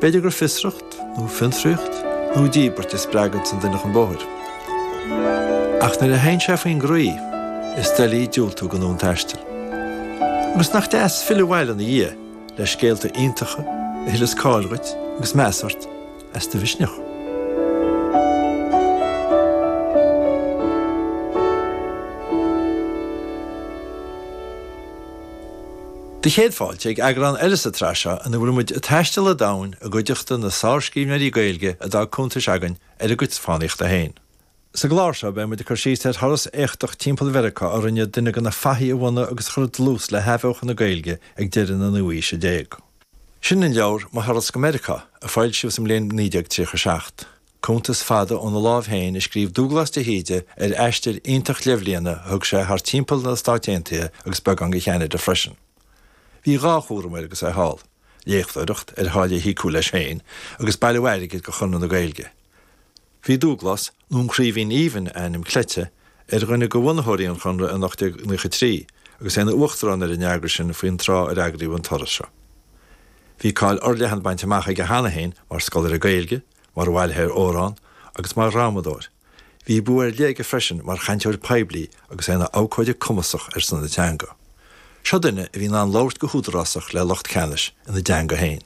B'fhéidir gur fiosracht, nó fiontraíocht, nó díbirt a spreaganns an duine chun bóthair. Ach nuair a théann sé faoin gcroí, is doiligh diúltú go dhúil an taistil. Agus nach deas filleadh abhaile ina dhiaidh le scéalta iontacha a thuilleas cáil dhuit agus meas ort as do mhisneach. 'Sé do chéad fáilte ag eagrán eile sa tsraith seo ina bhfuil muid ag taisteal an domhain i gcuideachta na sárscríbhneoirí Gaeilge a d'fhág cuntais againn ar a gcuid fánaíochta féin. Sa gclár seo beidh muid ag cur síos ar thuras éachtach timpeall Mheiriceá a rinne duine de na fathaigh a bhunaigh agus a chuir dlús le hathbheochan na Gaeilge ag deireadh na naoú aoise déag. Sin an leabhar Mo Thuras go Meiriceá, a foilsíodh sa mbliain 1937. Cuntas fada óna láimh féin a scríobh Dúglás de hÍde ar aistear iontach leathbhliana a thug sé thart timpeall na Stáit Aontaithe agus beagán go Cheanada freisin. Bhí dhá chúram air agus é thall, léachtóireacht ar tháille a thiocfadh leis féin agus bailiú airgid go Conradh na Gaeilge. Bhí Dúglás, nó an Craoibhín Aoibhinn a ainm cleite, ar dhuine de bhunaitheoirí an Chonradh in 1893 agus é ina uachtarán ar an eagras sin faoin tráth ar eagraíodh an turas seo. Bhí cáil fhorleathan bainte amach aige cheana féin mar scoláire Gaeilge, Mar bhailitheoir amhrán agus mar dhrámadóir, bhí bua ar leith aige freisin mar chainteoir poiblí agus é ina abhcóide cumasach ar son na teanga. Seo duine a bhí in ann labhairt go húdarásach le lucht ceannais ina dteanga féin.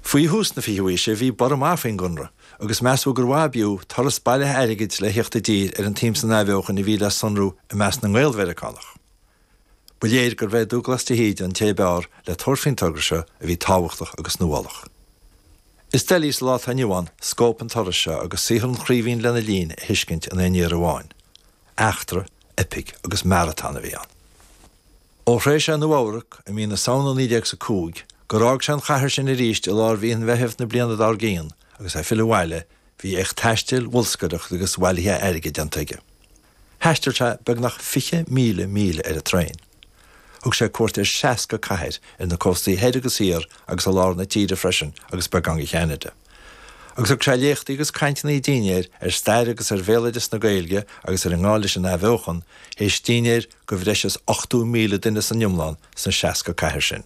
Faoi thús na fichiú aoise bhí borradh maith faoin gConradh agus measadh gur mhaith ab fhiú turas bailithe airgid le theacht i dtír ar an tsuim san athbheochan a bhí le sonrú i measc na nGael-Mheiriceánach. Ba léir gurbh é Dúglas de hÍde an té ab fhearr le tabhairt faoin togra seo a bhí tábhachtach agus nuálach. Is doiligh sa lá atá inniu ann scóip an turais seo agus saothar an Chraoibhín lena linn a thuiscint in aon iarraidh amháin. Eachtra, eipic agus maratón a bhí ann. Ó shroich sé Nua Eabhrac i mí na Samhna 19 sa 5 gur fhág sé an chathair sin arís i lár mhí an Mheithimh na bliana dár gcíonn agus é ag filleadh abhaile bhí éacht taistil, bholscaireachta agus bhailithe airgid déanta aige. Thaistil sé beagnach 20,000 míle ar an traein. Thug sé cuairt ar 60 cathair ar na cóstaí thoir agus thiar agus i lár na tíre freisin agus beagán i gCeanada. Agus thug sé léachtaí agus cainteanna ag dínnéir ar stair agus ar bhéaloideas na Gaeilge agus ar an ngá leis an athbheochan, théis dínnéir go bhreis is 80,000 duine san iomlán sna 60 cathair sin.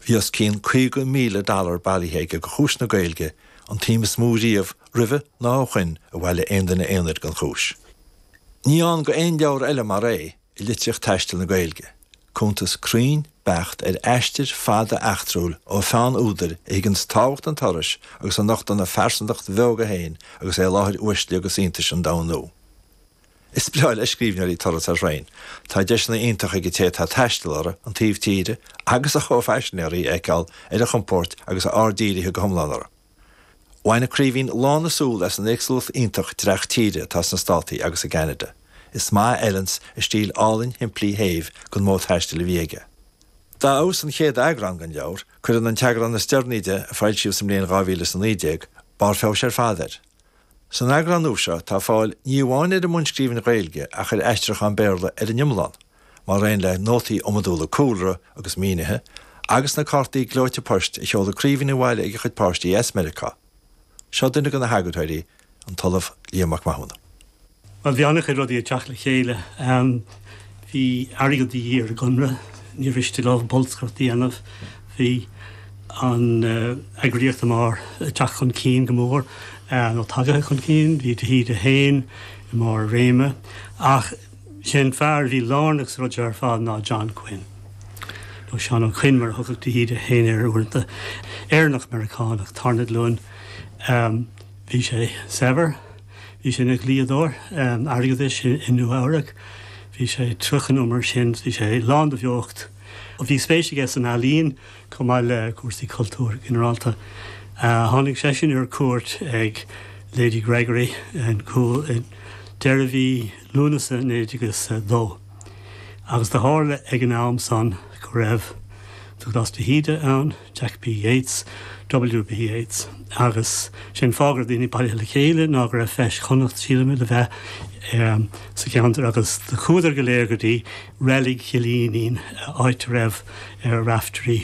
Bhí os cionn 50,000 dollar bailithe aige do chúis na Gaeilge, an tsuim is mó riamh roimhe ná ó shoin a bhailigh aon duine aonair don chúis. Ní ann go aon leabhar eile mar é i litríocht taistil na Gaeilge, cuntas cruinn, beacht ar aistear fada eachtrúil ó pheann údair a thuigeanns tábhacht an turais agus a nochtann a phearsantacht bheoga féin agus é i láthair uaisle agus iontais an domhain nua. Is breá le scríbhneoirí turas ar thraein. Tá deiseanna iontacha ag an té atá ag taisteal orthu an taobh tíre agus a chomhphaisinéaraí a fheiceáil ar a chompóirt agus a aird dírithe go hiomlán orthu. Bhain An Craoibhín lán na súl as an éagsúlacht iontach dreach tíre atá sna Státaí agus i gCeanada. Is maith a fheileann a stíl álainn shimplí shéimh don mhodh taistil a bhí aige. Dá fheabhas an chéad eagrán den leabhar, cuireann an t-eagrán is deireanaí de, a foilsíodh sa mbliain 2019, barr feabhais ar fad air. San eagrán nua seo tá fáil ní amháin ar an mbunscríbhinn Ghaeilge ach ar aistriúchán Béarla ar an iomlán, mar aon le nótaí iomadúla cúlra agus mínithe, agus na cártaí gleoite poist a sheoladh An Craoibhín abhaile ag a chuid páistí as Meiriceá. Seo duine de na heagarthóirí, an tOllamh Liam Mac Mathúna. Bhuel, bhí an-chuid rudaí ag teacht le chéile. Bhí airgead de dhíth ar an gConradh, ní mhiste leo bolscaireacht a dhéanamh. Bhí an eagraíocht ag teacht chun cinn go mór, nó tagaithe chun cinn. Bhí de hÍde féin i mbarr a réime. Ach sé an fear a bhí lárnach sa rud seo ar fad ná John Quinn, nó Seán Ó Coinn mar a thugadh de hÍde féin air uaireanta. Éireannach Meiriceánach, tarna glúin. Bhí sé saibhir. Bhí sé ina dhlíodóir airgeadais i Nua Eabhrac. Bhí sé tríocha nó mar sin. Bhí sé lán de bheocht. Bhí spéis aige san ealaín chomh maith le cúrsaí cultúir go ginearálta. Tháinig seisean ar cuairt ag Lady Gregory i gCúil deireadh mhí Lúnasa 1902 agus do tharla ag an am san go raibh Dubhghlas de hÍde ann, Jack B. Yeats, W.B. Yeats, agus sé an fáth go raibh daoine bailithe le chéile ná go raibh feis Chonnacht sílimid le bheith sa cheantar agus do chuadar go léir go dtí Reilig Chill Fhínín, áit a raibh Raiftearaí.